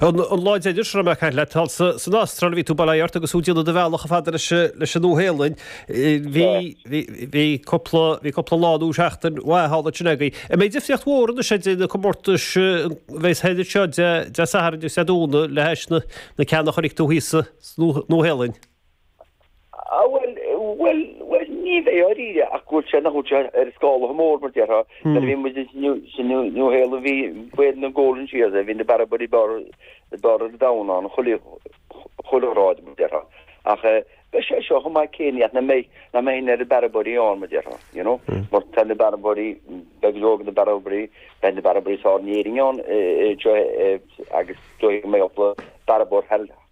An lá deiridh sular imigh Eithne leat thall san Astráil, bhí tú bailithe leat agus thú ag déanamh do bhealach chomh fada leis an Nua-Shéalainn. Bhí, bhí, bhí cúpla, bhí cúpla lá nó seachtain mhaith thall ansin againn. An mbeidh difríocht mhór anois idir na comórtais a bheas thoir anseo Dé Sathairn agus Dé Domhnaigh le hais na, na ceanna a chonaic tú thíos sa Nua-Shéalainn? Ah, bhuel, bhuel, bhuel, ní bheidh, dáiríre, ach go bhfuil sé, nach bhfuil sé ar an scála mór, mar déarfá. Nuair a bhí muid ins san New Zealand, bhí, bhí na Golden Shears ann, bhí na bearradóirí ab fhearr, ab fhearr ar domhan ann, chuile, chuile ghrád, mar déarfá. Ach eh, beidh sé seo chomh maith céanna, nach mbeidh, nach mbeidh na na bearradóirí ann, mar déarfá, you know, mar tá na bearradóirí, beidh go leor de na bearradóirí, beidh na bearradóirí is fearr in Éirinn ann, eh, eh, seo eh, agus, dóigh go mbeidh bearradóir,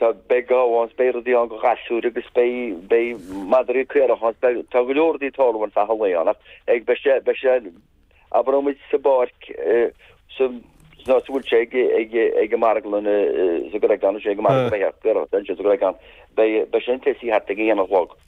Tá, beidh gabha ann 's beidh rudaí ann do ghasúir agus beidh, beidh madraí caorach ann 's beidh, tá go leor rudaí ag tarlú i gcaitheamh an lae ann ach ag, beidh sé, beidh sé, abraimid sa bpáirc sa, nó sa bhfuil sé ag, ag, ag an marglann i, sa gCreagán, is é ag an marglann a bheidh sé, caorach, beidh sé sa gCreagán, beidh, beidh sé ag tosaí thart ag a haon a chlog.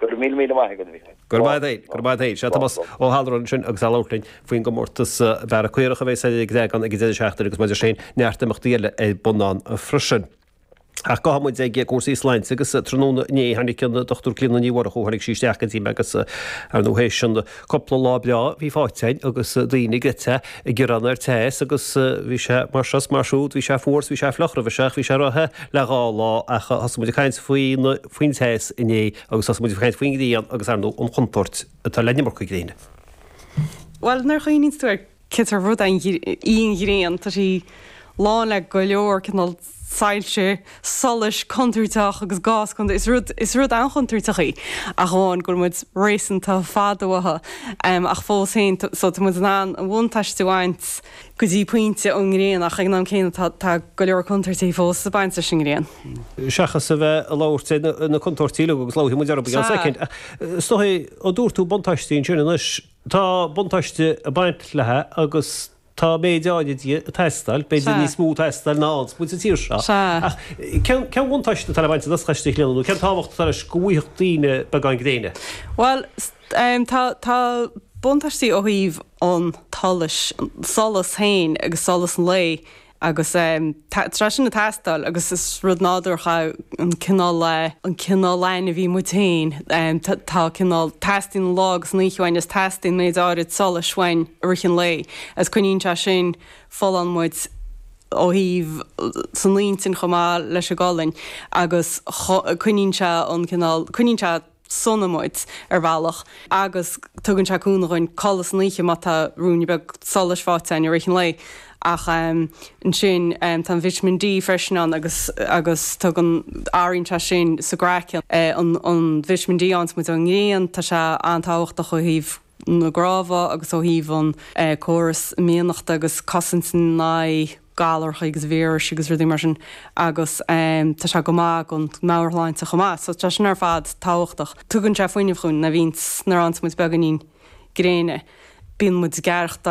Go raibh míle míle maith agat, a Thomáis. Gurb ea dhuit, gurb ea dhuit. Sea, Tomás Ó hAlmharáin ansin agus é ag labhairt linn faoin gcomórtas bearradh caorach a bheas ar an gCreagán ag an deireadh seachtaine agus, mar a dúirt sé féin, neart imeachtaí eile ar bun ann freisin. Ach casfaidh muid ar chúrsaí sláinte agus tráthnóna inné tháinig an Dr Clíona Ní Mhurchú, tháinig sí isteach go dtí mé agus, ar ndóigh, théis an cúpla lá breá a bhí faighte againn agus daoine ag ithe, ag gearán faoin teas agus bhí sé mar seo is mar siúd, bhí sé fuar is bhí sé fliuch roimhe seo ach bhí sé róthe le dhá lá ach thosaigh muid ag caint faoi na faoin teas inné agus thosaigh muid ag caint faoin ngrian agus, ar ndóigh, an chontúirt atá leis an iomarca gréine. Bhuel, nuair a chuimhníonn tú air, cén sórt rud í an ghrian? Tá sí lán le go leor cineál soilse, solais, contúirteach agus gás contúirteach. Is rud an-chontúirteach í, ach amháin go bhfuil muid réasúnta fada uaithi. Ach fós féin, so tá muid in ann buntáiste a bhaint. go dtí pointe ón ngréin ach ag an am céanna tá go leor contúirtí fós ag baint leis an ngréin. seachas a bheith ag labhairt ar na contúirtí uilig agus labhróidh muid orthu i gceann soicind. Is dóigh, ó dúirt tú buntáistí ansin, anois tá buntáiste ag baint léithi agus tá méid áirid di ag teastáil, b'fhéidir níos mó ag teastáil uainne sa tír seo. Ach cén cén buntáiste atá le baint as na doscha istigh linn nó cén tábhacht atá leis go bhfaighfeadh daoine beagán gréine? Bhuel, Tá buntáistí ó thaobh an tsolais, an solas féin agus solas an lae agus tá sé sin ag teastáil agus is rud nádúrach é an cineál lá, an cineál ainmhí muid féin. Tá cineál, teastaíonn an lá agus an oíche uainn is teastaíonn méid áirid solais uainn i rith an lae is coinníonn sé sin folláin muid ó thaobh, san intinn chomh maith leis an gcolainn agus coinníonn sé an, cineál, coinníonn sé. sona muid, ar bhealach, agus tugann sé cúnamh dúinn codladh san oíche má tá ruainne beag solais faighte againn i rith an lae, ach ansin tá an Vitamin D freisin ann agus agus tugann, athraíonn sé sin sa gcraiceann, an Vitamin D a fhaigheanns muid ón ngrian, tá sé an-tábhachtach ó thaobh. na gcnámha agus ó thaobh an córas imdhíonachta agus cosaint in aghaidh galarthaí agus víris agus rudaí mar sin agus tá sé go maith don mheabhairshláinte chomh maith so tá sin ar fad tábhachtach. Tugann sé fuinneamh dhúinn, bíonn, nuair a fhaigheanns muid beagáinín gréine bíonn muid gealgháireach